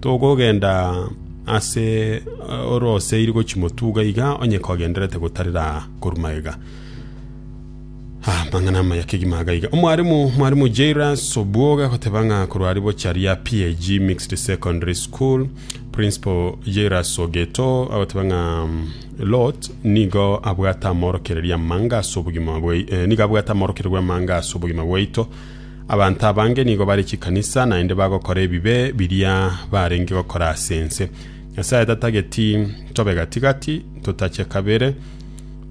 Togogenda ase oroseiri gochia motuga iga, onye kogendererete gotarera aa korwa magega. Ah, amang'ana amaya kegima iga iga. Omwarimu, mwarimu Jairus Obwoga agoteba ng'a korwa ari bochia ria PAG Mixed Secondary School, Principal Jairus Ogeto agoteba ng'a mm, Lot nigo abwate amorokereria amanga ase obogima bwai- eh, nigo abwate amorokereria bw'amanga ase obogima bwaito Abanto abange nigo bare chikanisa, naende bagokora ebibe biria barenge gokora ase ense. Nyasae tatageti tobe gati-gati, totache kabere.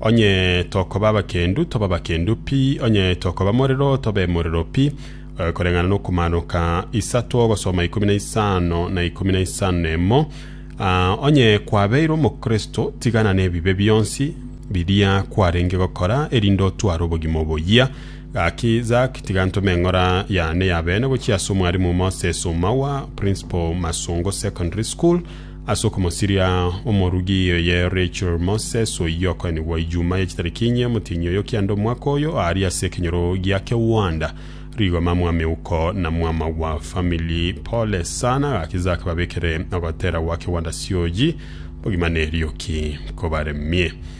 Onye tokoba abakendu, tobe abakendu pi, onye tokoba morero, tobe morero pi. Eh, koreng'ana n'okomaanoka isato ogosoma ikomi na isano na ikomi na isano na emo. Ah, onye kwabeire omokristo, tigana nebibe bionsi biria kwarenge gokora, erinde otware obogima oboyia. Gaki, Zach, tiga ntome eng'ora yane ya bene gochia ase Omwarimu Moses Oumawa, Principal, Masongo Secondary School, ase okomosiria omorugi oye Rachel Moses, oyio okoenigwa Ijumaa ya chitariki inye omotienyi oyo kianda omwaka oyo, aaria ase ekenyoro gia kegwanda. Rigoma mwameuko na mwama wa family. Pole sana, gaki Zach babekere ogotera gwa kegwanda sioji bogima nerioki kobaremie.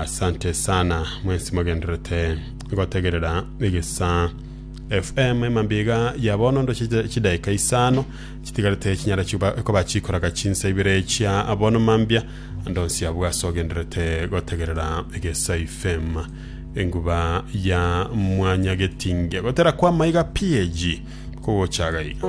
asante sana mwensi mogenderete gotegerera egesa fm emambiga ya bono ndo chide- chidaika isano chitigarete chinyara chiba koba chikoraga chinsa ibere chia abono mambia ndonsi abwo ase ogenderete gotegerera egesa fm enguba ya mwanya getinge gotera kwa maiga pg kogochaga iga